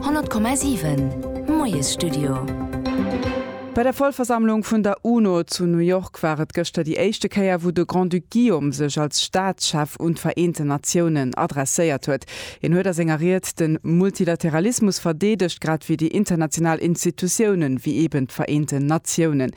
100,7 Moiesstudio. Bei der Vollversammlung vun der UNO zu New York war et gëschter déi éischte Kéier, wou de Grand-Duc Guillaume sech als Staatschef un d'Vereenten Natiounen adresséiert huet. Hien huet a senger Ried de Multilateralismus verdeedegt, grad wéi déi international Institutiounen, wéi eeben d'Vereenten Natiounen.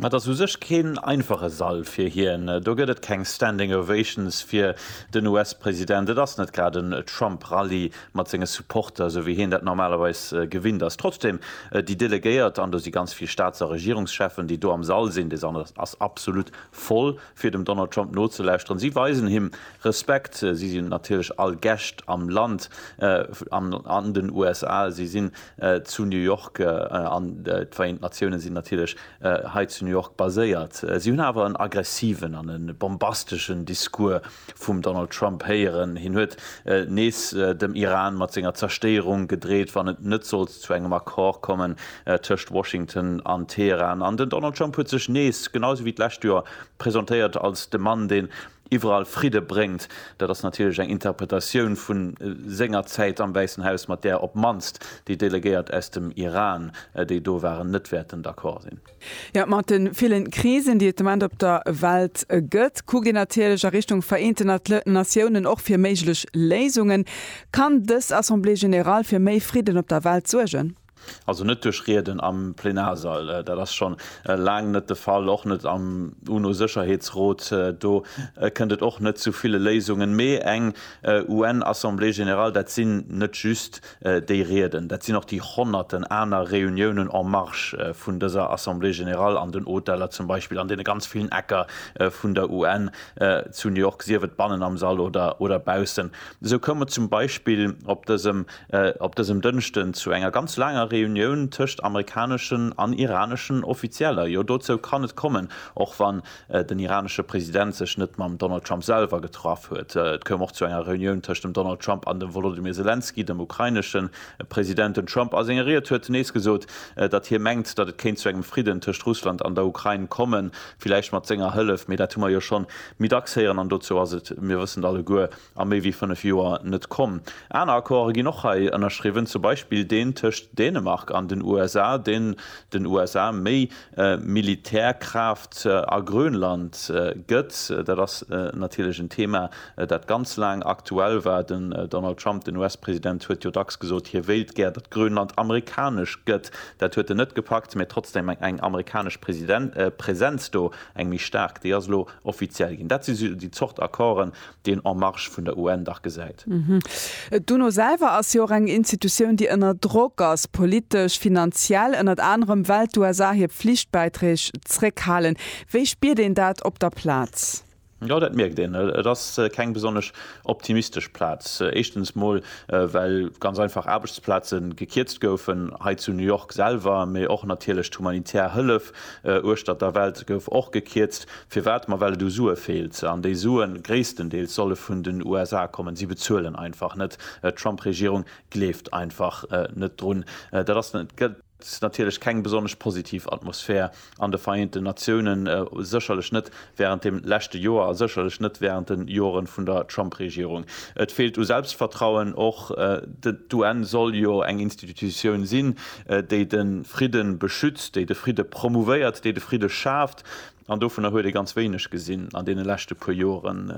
Et ass u sech keen einfache Sall fir hien. Do gëtt et keng Standing Ovations fir den US-President. Et ass net grad en Trump-Rally mat senge Supporter, esou wéi hien dat normalerweis gewinnt ass. Trotzdeem, déi Delegéiert, an do si ganz vill Staats a Regierungscheffen, déi do am Sall sinn, dee Sall ass absolut voll, fir dem Donald Trump nozelauschteren. Si weisen him Respekt. Si sinn natierlech all Gäscht am Land, an den USA. Si sinn zu New York an d'Vereent Natioune sinn natierlech hei zu New York baséiert. Si hunn awer en aggressiven an e bombasteschen Discours vum Donald Trump héieren. Hien huet nees dem Iran mat senger Zerstéierung gedreet, wann et net sollt zu engem Accord kommen tëscht Washington an Teheran. An den Donald Trump huet sech nees, genau esou wéi d'lescht Joer, presentéiert als de Mann, deen iwwerall Fridde bréngt, dat ass natierlech eng Interpretatioun vu senger Zäit am Wäissen Haus, mat där op d'mannst déi Delegéiert aus dem Iran, déi do waren, net wäerten d'accord sinn. Jo, mat de ville Krisen, déi et de Moment op der Welt gëtt, kuckt een natierlech a Richtung Vereenten Natiounen, och fir méiglech Léisungen. Kann dës Assemblée générale fir méi Fridden op der Welt suergen? Also net duerch Rieden am Plenarsall, dat ass scho laang net de Fall, och net am UNO-Sécherheetsrot. Do kënnt et och net zu ville Léisungen. Mee eng UN-Assemblée générale, dat sinn net just déi Rieden, dat sinn och déi honnerten aner Reuniounen en marge vun dëser Assemblée générale, an den Hoteller zum Beispill, an deene ganz villen Ecker vun der UN zu New York, sief et bannen am Sall oder baussen. Esou koum et zum Beispill op dësem op dësem Dënschden zu enger ganz laanger Reunioun tëscht amerikaneschen an iraneschen Offizieller. Jo, dozou kann et kommen, och wann den iranesche President sech net mam Donald Trump selwer getraff huet. Et koum och zu enger Reunioun tëscht dem Donald Trump an dem Wolodymyr Selenskyj, dem ukrainesche President. Den Trump a senger Ried huet nees gesot, datt hie mengt, datt et kéint zu engem Fridden tëscht Russland an der Ukrain kommen, villäicht mat senger Hëllef, mee dat hu mer jo schonn méi dacks héieren an dozou ass et, mir wëssen et alleguer, a méi wéi fënnef Joer net komm. Aner Accorde ginn och hei ënnerschriwwen, zum Beispill deen tëscht Dänemark an den USA, deen den USA méi Militärkraaft a Grönland gëtt. Dat ass natierlech en Thema, dat ganz laang aktuell war. Den Donald Trump, den US-President, huet jo dacks gesot, hie wéilt gär, datt Grönland amerikanesch gëtt. Dat huet en net gepackt, mä trotzdeem eng amerikanesch Presenz do, eng méi staark, déi ass elo offiziell ginn. Dat si déi Zort Accorden, deen En Marche vun der UN dach gesäit. D'UNO selwer ass jo och eng Institutioun, déi ënner Drock ass, politesch, finanziell ënnert anerem, well d'USA hir Pflichtbäiträg zréckhalen. Wéi spiert een dat op der Plaz? Jo, dat mierkt een. Et ass keng besonnesch optimistesch Plaz. Éischtens mol, well ganz einfach Aarbechtsplaze gekierzt goufen, hei zu New York selwer, mee och natierlech d'humanitär Hëllef uechtert der Welt gouf och gekierzt. Firwat? Ma well et u Sue feelt, an déi Sue gréisstendeels solle vun den USA kommen. Si bezuelen einfach net. D'Trump-Regierung gleeft einfach net drun. Dat ass natierlech keng besonnesch positiv Atmosphär an de Vereenten Natiounen, sécherlech net wärend dem leschte Joer a sécherlech net wärend de Jore vun der Trump-Regierung. Et feelt u Selbstvertrauen och. D'UN soll jo eng Institutioun sinn, déi de Fridde beschützt, déi de Fridde promouvéiert, déi de Fridde schaaf. An dovunner huet ee ganz wéineg gesinn an deene leschte puer Joren.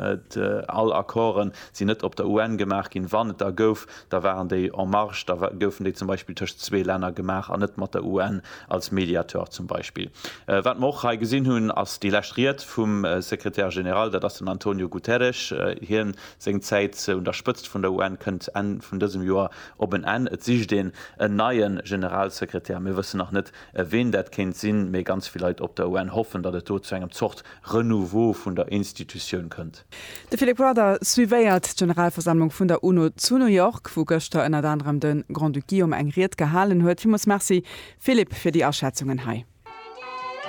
All Accorden sinn net op der UN gemaach ginn. Wann et der gouf, da waren déi en marge, da goufen déi zum Beispill tëscht zwee Länner gemaach an net mat der UN als Mediateur zum Beispill. Wat mer och hei gesinn hunn, ass déi lescht Ried vum Secrétaire général, dat ass den Antonio Guterres. Hien seng Zäit un der Spëtzt vun der UN kënnt Enn vun dësem Joer op en Enn. Et sicht een en neie Generalsekretär. Mir wëssen nach net, ween dat kéint sinn, mee ganz vill Leit op der UN hoffen, datt et do zu engem Zort Renouveau vun der Institutioun kënnt. De Philip Rudder suivéiert d'Generalversammlung vun der UNO zu New York, wou gëschter ënnert anerem de Grand-Duc Guillaume eng Ried gehalen huet. Villmools Merci, Philip, fir déi Aschätzungen hei.